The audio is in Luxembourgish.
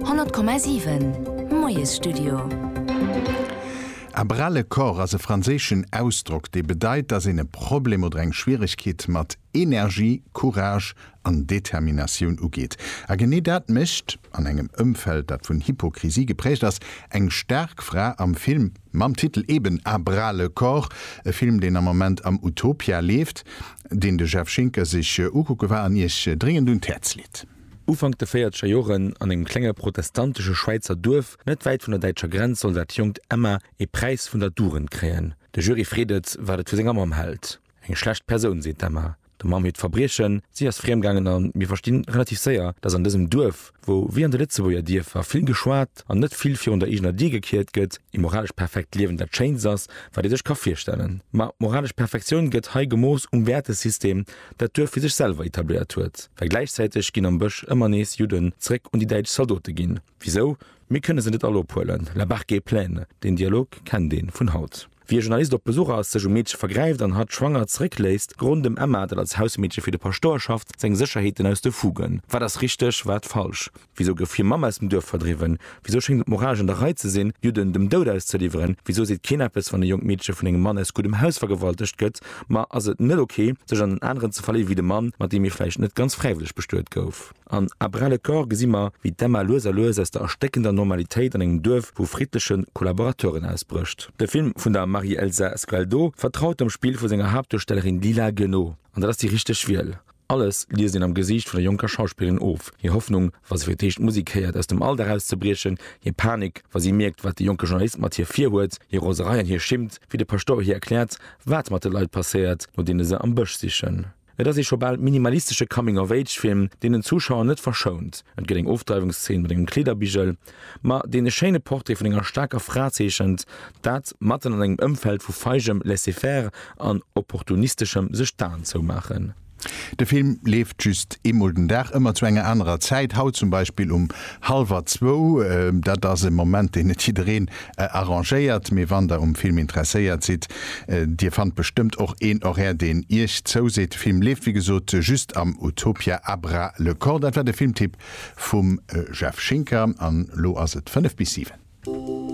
100,7 Moiesstudio. A brale corps ass e franséischen Ausdrock, dee bedeit, dass een e Problem oder eng Schwieregkeet mat Energie, Courage an Determinatioun ugeet. A genee dat mécht, an engem Ëmfeld, dat vun Hypokrisie geprägt ass, eng staark Fra am Film. Mam Titel eben À bras le corps, e Film, deen am Moment am Utopia leeft, deen de Jeff Schinker sech ukucke war an Iech dréngend un d'Häerz leet. Ufank de véierzeger Joren, an engem klenge protestantesche Schwäizer Duerf net wäit vun der däitscher Grenz, soll dat jonkt Emma ee Präis vun der Dugend kréien. De Jury freet et, wat et vu senger Mamm hält. Eng schlecht Persoun, seet d'Emma. Der Mamm hiert Verbriechen, Si ass friemgaangen a mir verstinn relativ séier, dass an dësem Duerf, wou wéi an de Lëtzebuerger Dierfer vill geschwat an net vill virun der eegener Dier gekiert gëtt, ee moralesch perfekt Liewen dat Schéinst ass, wat ee sech ka virstellen. Ma d'moralesch Perfektioun gëtt hei gemooss um Wäertesystem, dat d'Duerf fir sech selwer etabléiert huet. Well gläichzäiteg ginn am Bësch ëmmer nees Judden zeréck un déi däitsch Zaldote ginn. Wisou? Mir kënne se net all ophuelen, la barque est pleine, deen Dialog kennt ee vun haut. Wéi e Journalist op Besuch ass, sech um Meedche vergräift an hatt schwanger zeréckléisst, gerooden dem Emma, dat als Hausmeedche fir de Paschtouer schafft, seng Sécherheeten aus de Fugen. Wat ass richteg, wat falsch? Wisou gouf hir Mamm aus dem Duerf verdriwwen? Wisou schéngt et moralesch an der Rei ze sinn, Judden dem Doud auszeliwweren? Wisou seet keen eppes, wann e jonkt Meedche vun engem Mann aus guddem Haus vergewaltegt gëtt? Ma ass et net ok, sech an en aneren ze verléiwe wéi de Mann, mat deem ee vläicht net ganz fräiwëlleg bestuet gouf? An À bras le corps gesi mer, wéi d'Emma lues a lues aus der erstéckender Normalitéit an engem Duerf vu friddleche Kollaborateuren ausbrécht. De Film vun der Marie-Elsa Sgualdo vertraut dem Spill vu senger Haaptduerstellerin Lila Gueno. An dat ass déi richteg Wiel. Alles liest een am Gesiicht vun der jonker Schauspillerin of, hir Hoffnung, wa se fir d'éischt d'Musek héiert, aus dem Alldag auszebriechen, hir Panik, wa si mierkt, wat de jonke Journalist mat hir virhuet, hir Roserei an hir Schimmt, wéi de Paschtouer hir erkläert, wat mat de Leit passéiert, no deene se am Bësch sichen. Et ass ee scho bal minimalistesche Coming-of-Age-Film, deen den Zuschauer net verschount. Et gëtt eng Ofdreiwungsszeen mat engem Kleederbigel, ma deen e schéine Portrait vun enger staarker Fra zeechent, dat matten an engem Ëmfeld vu feigem Laisser-faire an opportunisteschem Sech-d'Aen zoumaachen. De Film leeft just eemol den Dag, ëmmer zu enger anerer Zäit, haut zum Beispill um hallwer zwou. Dat ass e Moment, deen net jiddereen arrangéiert, mee wann der um Film interesséiert sidd, dir fannt bestëmmt och een Horaire deen iech zouseet. De Film leeft wéi gesot just am Utopia a Bras le corps. Dat war de Filmtipp vum Jeff Schinker an elo ass et 5 bis 7.